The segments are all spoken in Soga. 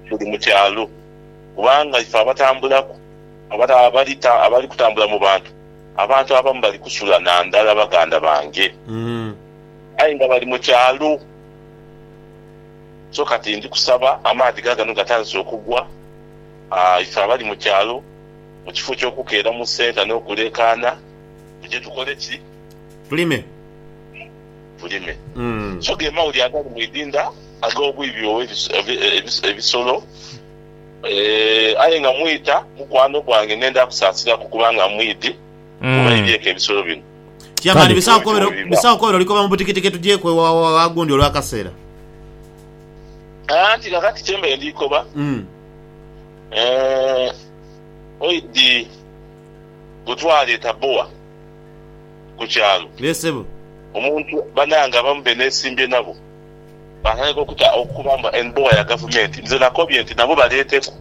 buli mu kyalo, kubanga ife abatambulaku abali kutambula mu bantu, abantu abamu bali kusula na ndala baganda bange, aye nga bali mu kyalo. So kati ndi kusaba, amaadhi gaagano gatandise okugwa, ife abali mu kyalo mu kifo ky'okukeera mu senta n'okuleekaana, tuje tukole ki? Tulime. bulime. So ge mawuli agali mu idinda ag'obwibi obw'ebisolo. Aye nga mwita mukwano gwange, nenda kusaasiraku kubanga mwidhi kubaidhieku ebisolo bino. Chairman bisaagho kobera olikoba mu butikitiki tugyeku aghundi olw'akaseera. Anti kakati kye mbaire ndi koba oidhi bwe twaleeta bowa. ku kyalo. Yee sebo. Omuntu banange abamu benesimbye nabo batandika okuta okukuba mbu en bowa ya gavumenti nze nakobye nti nabo baleeteku.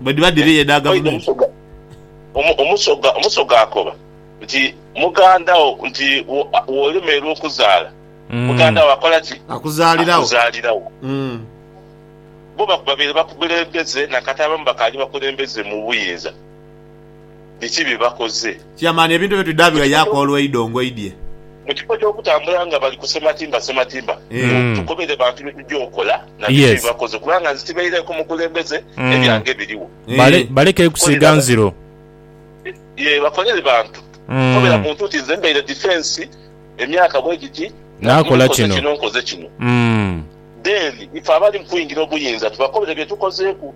Bwedhiba dhiri edha gavumenti. Omusoga omusoga omusoga akoba nti muganda wo nti wolemerwa okuzaala muganda wo akola ki? Akuzaalirawo. Akuzaalirawo. Bo babeire bakukulembeze nakati abamu bakaali bakulembeze mu buyinza. biki bye bakoze. Chairman ebintu ebyo tudhaabirwa yaaku olwaido ngoidye. Mu kifo ky'okutambula nga bali ku sematimba sematimba, tukobere bantu bye tugya okola na biki bye bakoze kubanga nze tibaireeku mukulembeze ebyange biriwo. Baleke kusiiga nziro. Yee bakolere bantu. Kobera muntu nti nze mbaire defence emyaka bwegiti nagumu nkoze kino nkoze kino. Then ife abali mu kuingira obuyinza tubakobere bye tukozeeku.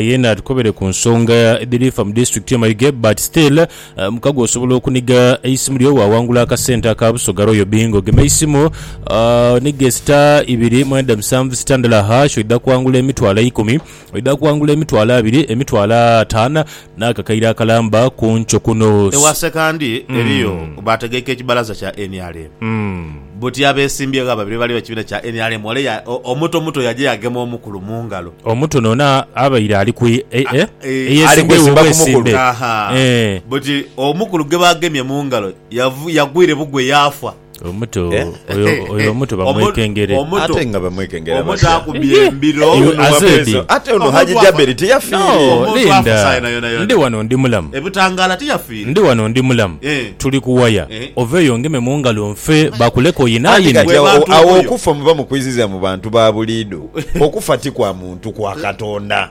Yena atukobere ku nsonga edhiri fa mu district ye Mayuge but still mukago osobola okuniga eisimu lyo wawangula akasente aka Busoga Royal Bingo gema eisimu onige sita ibiri mwenda musanvu sita ndala hash oidha kwangula emitwalo eikumi oidha kwangula emitwalo abiri emitwalo atano N'akakaire akalamba ku nkyo kuno. Ewa Sekandi eriyo baategeike ekibalaza kya nrm. Buti abeesimbyeegho ababiri bali be kibiina kya nrm ole omuto muto yaja yaagema omukulu mu ngalo. Omuto n'ono abaire ali ku eyesimbyeegho obwesimbe. Buti omukulu gwe baagemye mu ngalo yagwire bugwe yaafa. Omuto Eh? oyo oyo omuto Omu- bamwekengere. omu- Omuto. ate nga bamwekengera omuntu batya? akubye Ehe. embiro Oyo Ono aze wabwezo. di. Ate ono Omuntu haji afa- jaberi teyafiire No, Omuntu afa Linda. sayi na yona yona. Ndi wano ndi mulamu. ebutangaala tiyafiire Ndi wano ndi mulamu. Eh. Tuli kuwaya. Eh. Oveeyo ngeme mu ngalo nfe bakuleka Anti oyinaayini. kati Gwe awo- bantu awo oyo. okufa muba mukwiziza mu bantu ba buliido okufa ti kwa muntu kwa katonda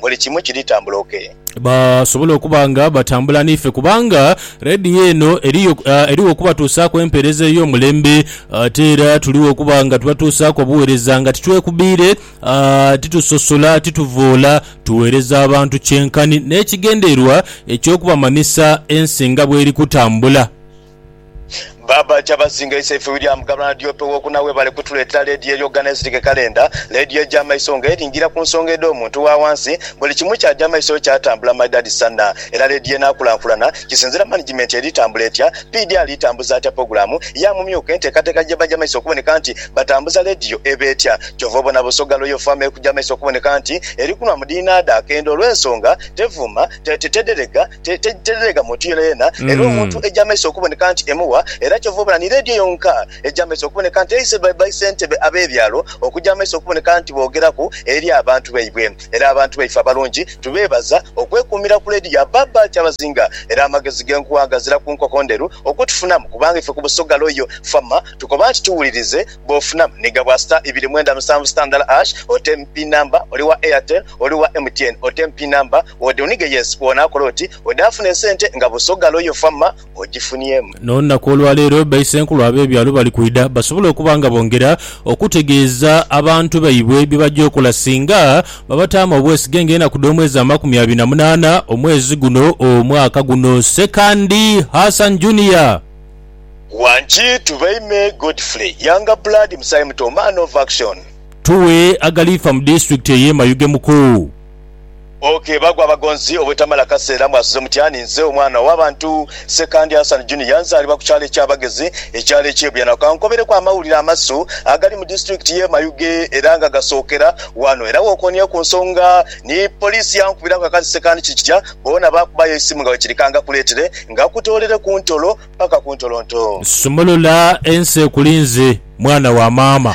buli kimu kiri tambula okay. Basobole okuba nga batambula n'ife kubanga Radio eno eriyo erigho okubatuusaaku empeereza ey'omulembe ate era tuligho okuba nga tubatuusaaku obuweereza nga titwekubiire, titusosola, tituvoola, tuweereza abantu kyenkanhi n'ekigendererwa eky'okubamanhisa ensi nga bweri kutambula. Baaba Kyabazinga Isaife William Gavana Diope Wokuna Webale kutuletera leediyo eri okugana ezirike kalenda, leediyo eja maiso nga eringira ku nsonga edho muntu wa wansi, buli kimu kyaja maiso kyatambula my dad Sana era leediyo enakulankulana kisinzira management eri tambula etya, PD ali tambuza atya pogulamu ya mumyuka entekateka jebaja maiso okuboneka nti batambuza leediyo eba etya kyova obona Busoga Royal Farm eri kuja maiso okuboneka nti eri kunwa mu dhinadha akendo olwensonga tevuma, te, te, tederega. tereegamu nti yonayona, era omuntu egy'amaiso okuboneka nti emugha, era kyova obona ni leediyo yonka egy'amaiso okuboneka nti eise baisentebe ab'ebyalo okugya amaiso okuboneka nti boogeraku eri abantu baibwe. Era abantu baife abalungi tubeebaza okwekuumira ku leediyo ya Baaba Kyabazinga, era amagezi g'enkuwa gazira ku nkoko ndheru okutufunamu kubanga ife ku Busoga Royal Fama tukoba nti tuwulirize bw'ofunamu ni gabwa star ibiri mwenda musanvu star ndala hash otem pin number oli wa Airtel oli wa MTN otem pin number Ode onige yes kwona akole oti ode afune esente nga busoga loyo fama ojifunyemu. N'olunaku olwaleero baisenkulu ab'ebyalo bali kwidha basobole okuba nga bongera okutegeeza abantu baibwe bye baja okola singa babataamu obwesige ng'enaku dh'omwezi amakumi abiri na munaana omwezi guno omwaka guno. Sekandi Hassan Junior. Wangi Tubeime Godfrey, Younger Blood, Musaayi Muto, Man of Action. Tuwe agaliifa mu disitulikiti ey'e Mayuge Muku. Ok bagwa abagonzi obwetamala kaseera mwasuze mutya ni nze omwana owa bantu Ssekandi Hassan Junior nzaalibwa ku kyalo eky'abagezi ekyalo eky'e Buyana kankobereku amawulire amasu agali mu disitulikiti y'e Mayuge era nga gasookera wano era wokoonie ku nsonga ni poliisi yankubiraku akati Ssekandi kiri kitya boona baakubayo eisimu nga wekiri kangakuleetere ngakutoolere ku ntolo paka ku ntolonto. Sumulula ensi ekulinze mwana wa maama.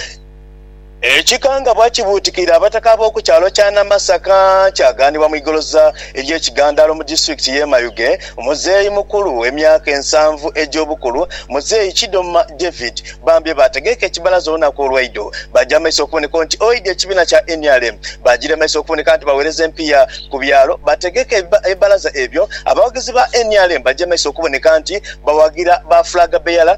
Ekikangabwa kibuutikira abataka ab'oku kyalo kya Namasaka kyagaanibwa mu igoloza ery'ekigandaalo mu disitulikiti y'e Mayuge muzeeyi mukulu w'emyaka ensanvu egy'obukulu, muzeeyi Kidoma David baambye baategeeka ekibalaza olunaku olw'eidho baja mu maiso okuboneka nti oidha ekibiina kya nrm baagiremesa okuboneka nti baweereza empiiya ku byalo bategeke ebibalaza ebyo abawagizi ba nrm baje mu maiso okuboneka nti bawagira ba flag bearer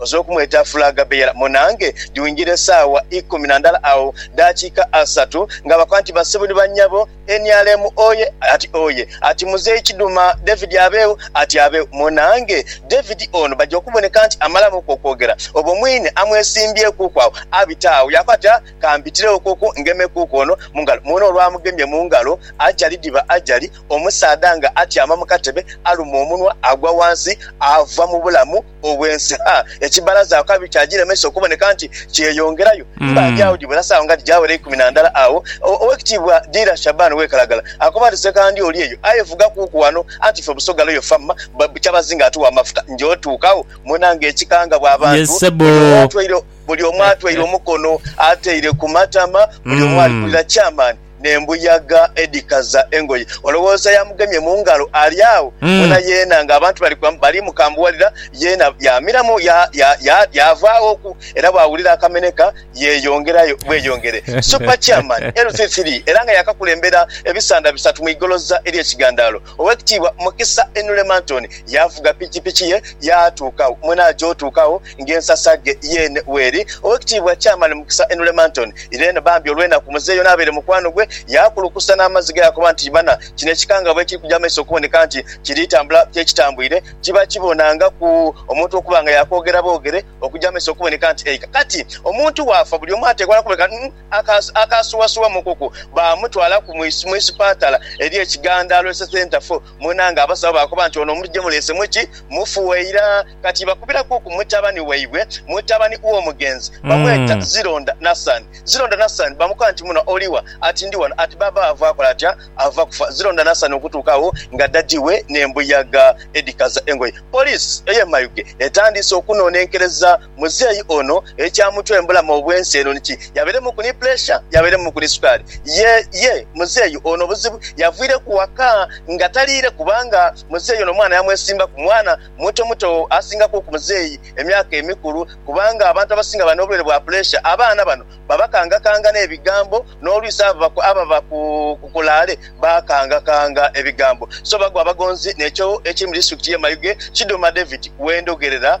Oze okumweta Flag Bearer munange dhiwingira esaawa ikumi na ndala agho dakika asatu nga bakoba nti basibu ni banyabo nrm oye ati oye ati Muzei Kiduma David abegho ati abegho munange David ono baja okuboneka nti amalamu ku okwogera obwo mwine amwesimbyeku ku agho abita agho yakoba ati aah kambitiregho ku ku ngemeku ku ono mungalo mwene olwamugemye mungalo ajali dhiba ajali omusaadha nga atyama mukatebe aluma omunwa agwa wansi ava mubulamu obwensi. Ha, ekibalaza awo kabi kyagilemesa okuboneka nti kyeyongerayo. Mba ndi agho gibula saawa nga tigyawera ikumi na ndala agho, Owekitiibwa Dealer Shaban Wekalagala akoba nti, Sekandi oli eyo aye vuga kuuku wano, anti ffe Busoga Loyal Famma bwe Kyabazinga atuwa amafuta. Nja otuuka agho mwena nga ekika nga bwa bantu, buli omu atweire omukono ateire ku matama, buli omu ali kulira Chairman. n'embuyaga edhikaza engoye. Olowooza yamugemye mu ngalo? Ali agho wona yeena ng'abantu bali bali mukambuwalira, yeena yaamiramu ya, ya, ya, yaavaaghoku, era bw'awulira akamenheka yeeyongerayo bweyongere. Super Chairman LC3 era nga yaakakulembera ebisanda bisatu mu igoloza ery'ekigandaalo. Owekitiibwa Mukisa Inule Mantoni yaavuga pikipiki ye yaatuuka agho mwene aja otuuka agho nga ensasa ghe yeene weeri. Owekitiibwa Chairman Mukisa Inule Mantoni ireeno bambi olwenaku muzeeyi ono abeere mukwano gwe yaakulukusa n'amazzi ge yaakoba nti bana kino ekikanga bwekiri kuja maiso okuboneka nti kiri tambula kyekitambwire kiba kibonangaku omuntu okuba nga yaakwogera bwogere okuja maiso okuboneka nti eika kati omuntu waafa buli omu atekwa nakuboneka akaasuwasuwa mu nkuku baamutwala ku mu isipatala eri e Kigandaalo Health Centre fo mwena nga abasawo baakoba nti ono omuntu gye muleese mu ki mufu waira kati bakubirakuku mutabani waibwe mutabani w'omugenzi bamweta Zironda Nassan Zironda Nassan bamukoba nti muno oli wa? Ati ndi wano Ati baaba ava akola atya ava kufa Zironda Nassan okutuuka agho nga daddy we n'embuyaga edhikaza engoye Poliisi ey'e Mayuge etandiise okunonenkereza Muzeeyi ono ekyamutuembulamu obwensi eno niki, yaberemuku ni puleesha, yaberemuku ni sukaali. Ye, ye, muzeeyi ono obuzibu yavwireku waka nga taliire kubanga muzeeyi ono omwana yamwesimbaku. Mwana muto muto asingaku ku muzeeyi emyaka emikulu kubanga abantu abasinga abali n'obulwaire bwa puleesha abaana bano babakangakanga n'ebigambo n'olwisi abo ababa ku kulaale bakangakanga ebigambo. So bagwa abagonzi. N'ekyo ekiri mu disitulikiti y'e Mayuge, Kidoma David we ndhogerera.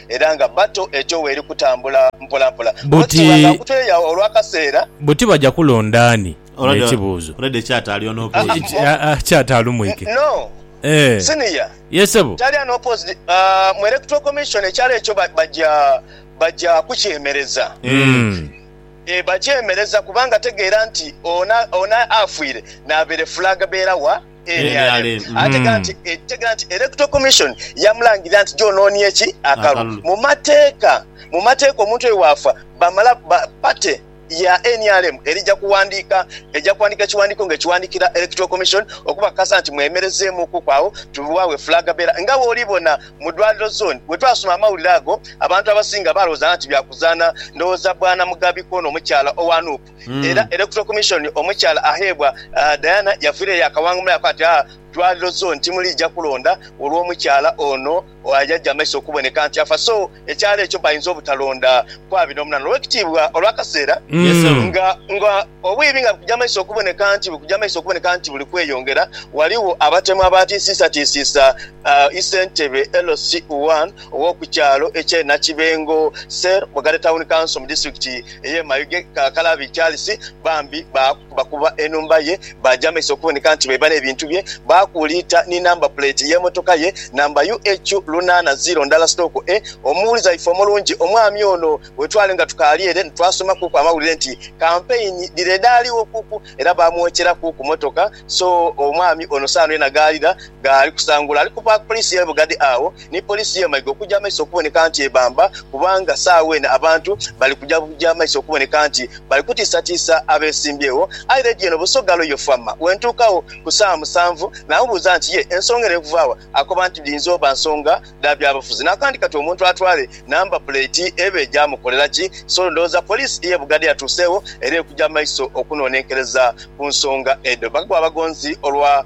era nga battle ejo weeri kutambula mpolampola. Buti Bwetutubanga nkutweyawo olw'akaseera. Buti baja kulonda ani? N'ekibuuzo. Already ekyata ali unopposed. Kyata alumwike. No. Eeh. Senior. Yes ssebo. Tali unopposed. Mu Electoral Commission ekyalo ekyo baja baja kukyemereza. Eeh. Eeh bakyemereza kubanga tegeera nti ono ono afiire nabeere flag bearer wa. nrm ategha nti etegha nti Electoral Commission yamulangirira nti gyonoonie ki? Akalulu. Mu mateeka mu mateeka omuntu oyo bw'afa bamala ba party ya nrm erija kuwandiika eja kuwandiika ekiwandiiko nga ekiwandiikira Electoral Commission okubakakasa nti mwemerezeemuukuku agho tubiwagho eflag bearer. Nga bw'oli bona mu dwaliro zone bwe twasoma amawulire ago abantu abasinga baalowooza nga nti bya kuzaana ndowooza bwana Mugabi kw'ono omukyala owa nup. era Electoral Commission omukyala agheebwa Diana yaviireyo yaakawangumiraku ati, Aa dwaliro zone timuliija kulonda olw'omukyala ono ayaja amaiso okuboneka nti afa so ekyalo ekyo bainza obutalonda kw'abiri n'omunaana olw'ekitiibwa olw'akaseera nga nga obwibi nga bukuja amaiso okuboneka nti bukuja amaiso okuboneka nti buli kweyongera. Ghaligho abatemu abaatiisiisatiisiisa aa Issentebe LC1, ow'oku kyalo eky'e Nakibengo Cell mu Gate Town Council mu disitulikiti ey'e Mayuge, Kakalabi Charles bambi baakubakuba enhumba ye baagyambaisa okuboneka nti baiba n'ebintu bye, baakuuliita ni namba puleeti y'emotoka ye, namba UH lunaana ziro ndala sitooko E. Omuwulize waife omulungi omwami ono wetwali nga tukaali ere nitwasoma kuuku amawulire nti kampeyini dhire dhaaliwo kuuku era baamwokyera kuuku motoka so omwami ono saano yena ghaalira ghali kusangula ali ku paaka poliisi y'e Bugadi agho ni poliisi ye Maiga okuja amaiso okuboneka nti ebamba kubanga saagha eno abantu bali kuja amaiso okuboneka nti bali kutiisatiisa abesimbyewo. Aye leediyo eno Busoga Royal Fama wentuukagho ku saawa musanvu namubuuza nti ye ensonga eno ekuva wa? Akoba nti dhiyinza oba nsonga dha byabufuzi nakandi kati omuntu atwale namba puleeti eba egyamukolera ki? So ndowooza poliisi ye Bugadha yatuuseegho era eri kuja amaiso okunonenkereza ku nsonga edho. Bagwa abagonzi olwa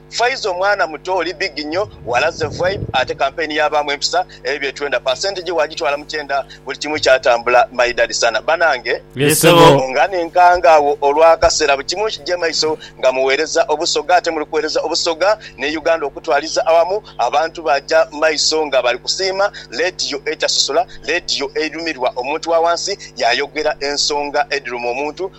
Faiza omwana muto oli big nyo, walaze vibe ate campaign yabaamu empisa ebyo byetwenda percentage wagitwala mukyenda buli kimu kyatambula my daddy sana banange. Yes sebo. Nga nenkanga agho olwakasera bukimu nkije maiso nga muwereza obusoga ate muli kuwereza obusoga ne Uganda okutwaliza awamu abantu baja maiso nga bali kusiima ladiyo etasosola ladiyo eidhumirwa omuntu wawansi yayogera ensonga edhiluma omuntu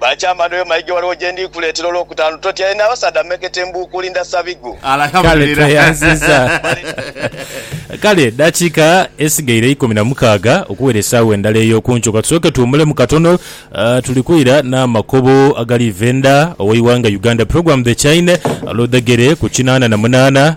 Baakyama n'oyo mayiga Waliwo gye ndi kuleetera olw'okutaanu Totyaire n'abasaadha mmekete Mbuukuuli ndasa bigwo. Kale tweyanziza. Kale dakika esigaire ikumi na mukaaga okuwera esaawa endala ey'okunkyo katusooke tuwumulemu katono. Tuli kwira n'amakobo agaliiva enda ow'eighanga Uganda Program The Chine Ludhegere ku kinaana na munaana.